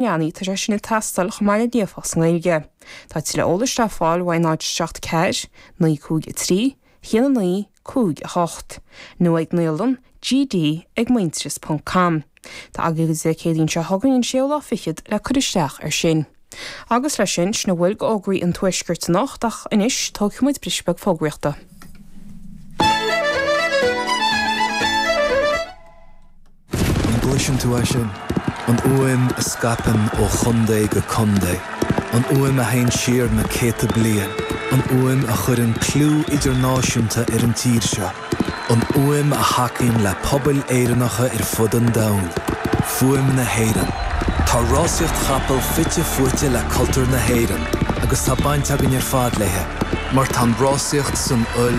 leanaí, tá sé sin ag teastáil chomh maith le líofacht sa nGaeilge. Tá tuilleadh eolais le fáil uaidh náid seacht 4 9 5 3 0 9 5 8 nó ag naíolann gd ag muintearas ponc com. Tá agaibh go dtí an Chéadaoin seo chugainn an séú lá fichead le cur isteach ar sin. Agus le sin, sin a bhfuil de fhógraí an Tuaiscirt anocht ach anois, tógfaidh muid briseadh beag fógraíochta. An gcloiseann tú é sin? An fhuaim a scaipeann ó chontae go contae. An fhuaim a théann siar na céadta bliain. An fhuaim a chuireann clú idirnáisiúnta ar an tír seo. An fhuaim a thacaíonn le pobail Éireannacha ar fud an domhain. Fuaim na hÉireann. Tá rásaíocht chapall fite fuaite le cultúr na hÉireann agus tá baint againn ar fad léi mar tá an rásaíocht san fhuil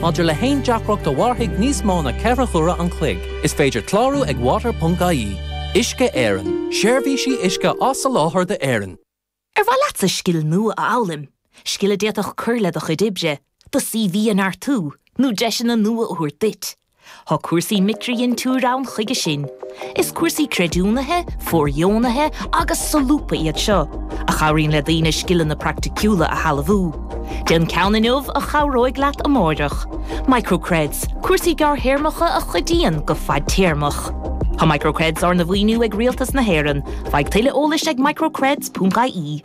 Maidir le haon deacracht a mhairfidh níos mó na ceithre huaire an chloig, is féidir clárú ag water.ie. Uisce Éireann, seirbhísí uisce á soláthar d'Éirinn. Ar mhaith leatsa scil nua a fhoghlaim, scil a d'fhéadfadh cur le do chuid oibre, do CV a neartú, nó deiseanna nua a thabhairt duit? Tá cúrsaí micridhintiúir ann chuige sin. Is cúrsaí creidiúnaithe, fóirdheonaithe agus solúbtha iad seo, a chabhraíonn le daoine scileanna praiticiúla a shealbhú. Déan ceann inniu a chabhróidh leat amáireach. Microcreds, cúrsaí gearrthéarmacha a chuidíonn go fadtéarmach. Tá Microcreds arna mhaoiniú ag Rialtas na hÉireann. Faigh tuilleadh eolais ag microcreds.ie.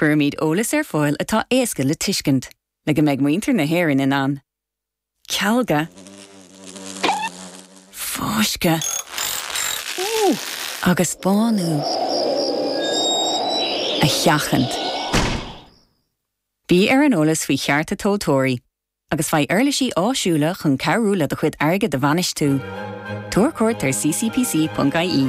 Cuirimid eolas ar fáil atá éasca le tuiscint, le go mbeidh muintir na hÉireann in ann cealga, fáisceadh agus bánú a sheachaint. Bí ar an eolas faoi chearta tomhaltóirí agus faigh uirlisí áisiúla chun cabhrú le do chuid airgid a bhainistiú. Tabhair cuairt ar ccpc.ie.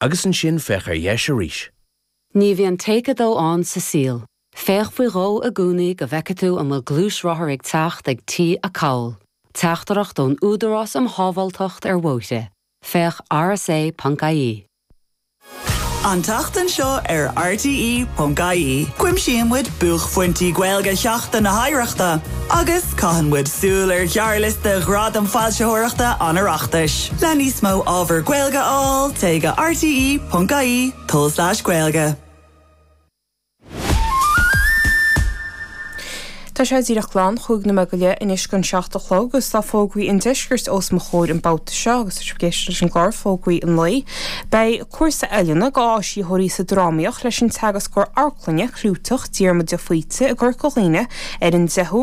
Agus ansin féach ar dheis arís. Ní bhíonn take dó ann sa saol. Féach faoi dhó i gcónaí go bhfeice tú an bhfuil gluaisrothar ag teacht ag T-acomhal, teachtaireacht ón Údarás um Shábháilteacht ar Bhóithre, féach rsa.ie. An tseachtain seo ar rte.ie, cuimsíonn muid buaicphointí Gaeilge Sheachtain na hOidhreachta. Agus caitheann muid súil ar ghearrliosta Ghradaim Foilsitheoireachta an Oireachtais. Le níos mó ábhar Gaeilge a fháil, téigh go rte.ie tulslais gaeilge. Tá sé díreach glan cúig nóiméad anois go dtína seacht a chlog agus tá fógraí an deiscirt os mo chomhair an babhta seo agus tá sibh ag éisteacht leis an gclár Fógraí an Lae. Beidh cúrsa oiliúna d'áisitheoirí sa drámaíocht leis an teagascóir amharclainne clúiteach Diarmuid de Faoite i gCorca Dhuibhne ar an deichiú